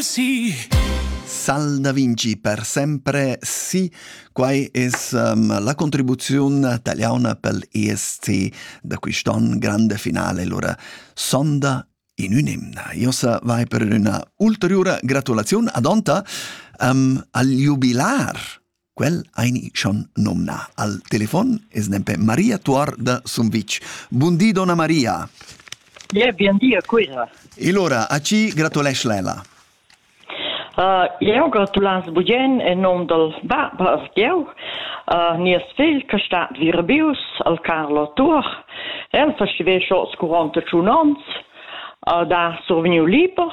Sì. Sal da Vinci per sempre sì. Quai es um, la contribuziun taliana pel ESC da quist'on grande finale lura sonda in un'imna. Io sa vai per üna ulteriura gratulaziun ad Onta um, al jubilar Quel ein schon nomna al telefon es nempe Maria Tuor da Sumvitg. Bundi donna Maria. Yeah, bien dia Cuira. E allora, a ci gratulesc Lela. Uh, eu gratulans bugen en nom del baba of Dieu, uh, nies figl che stat virbius, al Carlo Tur. El festivesce oss 41 onns, uh, da survegniu liber,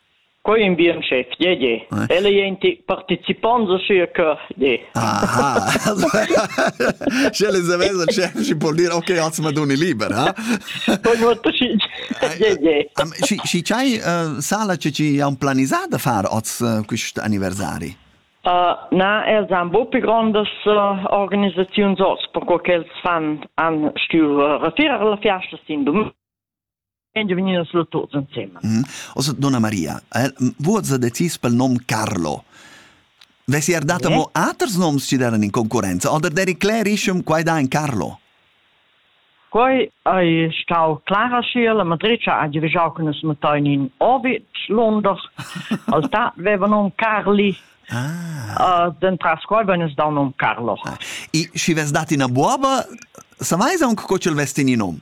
Quei in bien chef, gie, gie. Ella ei in tic participont da sia cuort, gie. Aha. Sche les avess il chef schi può dir ok, oz ma doni liber, ha? Poi nuot pacit. Gie, gie. Schi schi chai sala che ci ha un planisà da far oz quist anniversari? Uh, na, els han bo più grandas uh, organisaziuns oz, perché quels fan han stueu uh, retirar la fiasta sin domen. Quindi veniva solo tutti insieme. Mm. Also, donna Maria, eh, vuoza decis pel nom Carlo. Vesi er data yeah. mo aters noms ci daran in concorrenza, oder der Clarischum quai da in Carlo? Quai ei stau clara schiel a Madricia a divigiau con es matain in Orbit Londor. Al ta veva nom Carli. Ah. Uh, den tras qual wenn es da nom Carlo. Ah. I, si ves dat in a buoba, sa mai aunque co cel vesti in nom?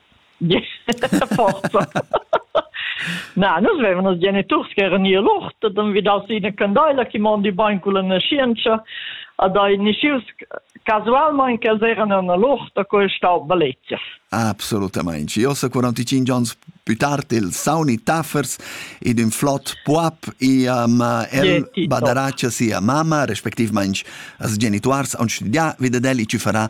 forza na nus vevan nos geniturs che eran ir l'ort et han vidau si ina candeila che mondi bein culla nascienza ad ei nischius casualmein che els eran en l'ort a cui stau balezia Absolutamente. Io so 45 anni più tardi il sauni taffers ed un flot puap e um, el badaraccia sia mamma, respectivamente as genituars, on studià, vida deli ci farà